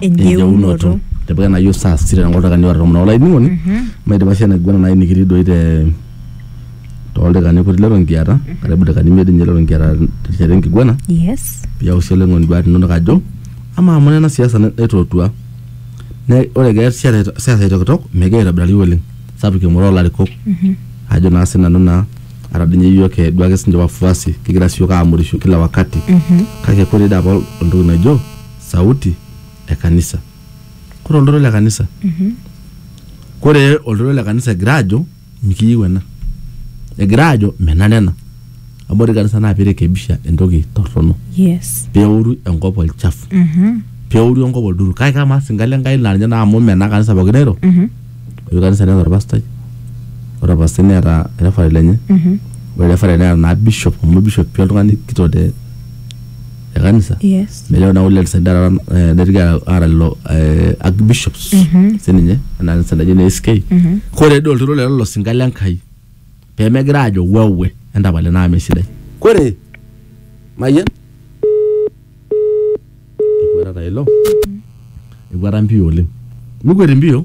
enjeunoto. Tipika ena yiok saa sita tenkolong oldaikani oare tomon olainining'oni maidipa sii enaiguana nai nikitii doi te toldaikani kutik leton kiata karibu ildaikani imiet dii ninye leton kiata terishata enkiguana Yes. piyau sii olainining'oni induat inonok ajo amaa amu ore ena siasa na- naitootua na ore egira siasa siasa aitokitok megira aitobirari oleng sapuk engoro olarikok ajo naa sinanu naa ata dii ninye iyiok eh, duake sinche wafuasi kigira sii iyiok amurisho kila wakati kake kore dii apa oltoki najo sauti e kanisa kore oltoilo le kanisa kore oltoilo le kanisa egira ajo mikiyieu ena egira ajo menare ena amu ore kanisa naa pirekebisha entoki torrono Yes. peoru enkop olchafu Mhm. peoru enkop olduru kake kamaa singa le Nkai laa ninye naa amu mena kanisa pookin nairo Mhm. ore kanisa neeta orpastai ore orpastai neeta refaret lenye Mhm. ore refaret neeta naa bishop amu bishop pii oltung'ani kitok te e kanisa Yes. metejo naa ule lisaida taata eh, neitoki aata lelo eh, archbishops sininye ena kanisa naji ne SK kore dii olturur lelo losinka le Nkai pemegira aajo wewe entapale naa mesidai kore mayian ekwetata ilo ekweta mpio oleng mikwet mpio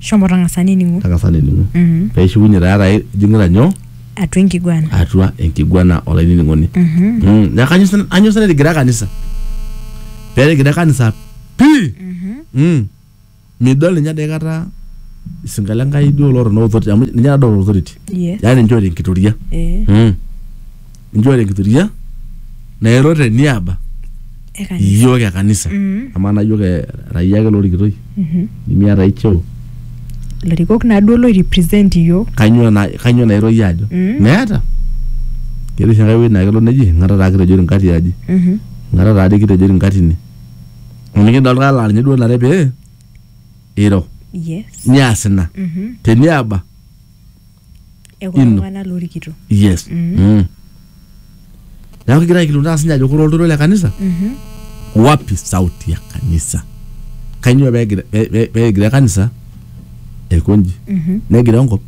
Shomo tang'asa nining'u. tang'asa nining'u Mhm. pee ishukunye taa etaa ijing'ita nyoo Atua enkiguana. atua enkiguana olainining'oni Mhm. Mm, neeku kanyo sa- kanyo sa netigira kanisa pee etigira kanisa pii Mhm. Mm. midol ninye ade kata isinka le Nkai duo loota no authority amu ninye nadol authority Yes. yaani ninche oota enkitoria Eh. Mm. injua tenkitoria nairo te niaba Ekanisa. iyiook e kanisa Mm. amaa naa iyiook e- era iyie ake lorikitoi Mhm. nimiata ai cheo ilarikok naaduo loirepresent iyiook kanyoo na kanyoo nairo iyie ajo Mm. meeta ketii oshi enkae wueji naa kelo neji ing'ata taa kitejori nkati aji Mhm. ing'ata taa dii kitejori nkati ine amu nikidol kaa laa ninye duo nare pee iro yes nias ina Mhm. teniaba e kulo Ino. tung'anak lorikito yes Mm. neeku kigira aikilikuana sinye ajo kore oltoilo le kanisa wapi sauti ya kanisa kainyoo pegira- pe- pe- pegira kanisa aikonji negira enkop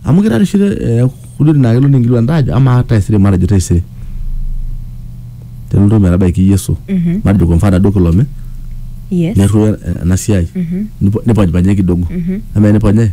amu kira rishire eh, kudodi naa kelo ninkilikuan taa ajo amaa taisere matejo taisere tenelotu metabaiki yesu Mhm. matejo kwa mfano duo kilome yes netu ena siai Nipo- niponyponye kidogo ama niponye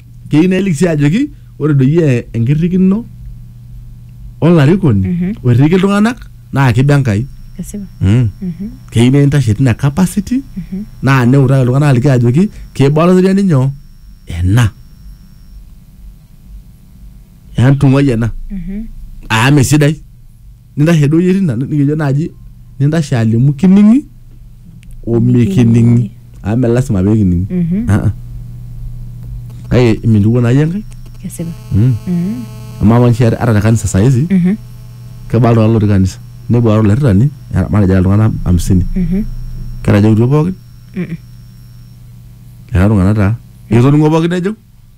keyieu nelik sii ajoki ore doi e- enkirrikino olarikoni Mhm. oirriki iltung'anak naa kiba Enkai Esipa. mm. Mhm. keyieu nintashe tina capacity Mhm. naa neutaki iltung'anak aliki ajoki kiba olaitoriani nyoo ena entung'uai ena Mhm. amu mesidai nintashe doi etii ina nikijo naaji nintashe alimu kining'i omikining'i amu me lasima pee kining'i Mhm. Ah, ah. kake imintukuo naa iyie enkai Kesipa. Mm. Mhm. amaa amu nishia ata te kanisa saa hizi Mhm. kebaa iltung'anak lotii kanisa nepuo aar olairritani era- matejo era iltung'anak hamsini Mhm. ketajautuo pookin Mhm. era iltung'anak taa etoning'o pookin nejo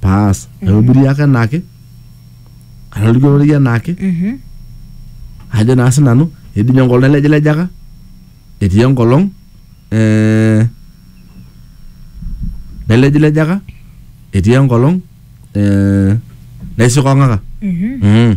paas aihubiri ake enaake atoliki ororei enaake Mhm. ajo naa sinanu etii ninye enkolong elejilejaka etii enkolong eh, nelejilejaka etii enkolong eh, naisikong'aka Mhm. mm.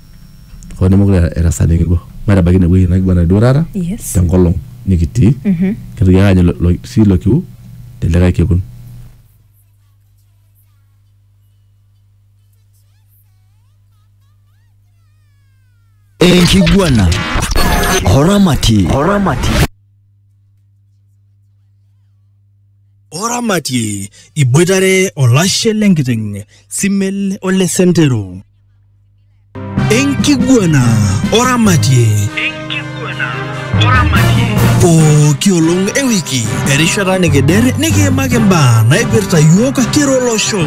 hoo nemekure era saa nikirua matabaiki ine wueji nikirua enaduo taata Yes. tenkolong nikitii Mhm. kitoki ake aanyu lo- lo- sii ilo kiu telikae kekun enkiguana oramati oramati oramatie iboitare olashe lenkiteng simel ole sentero enkiguana oramatie pooki olong ewiki erishata nikider nikiimaki imbaa naipirta yiok kira olosho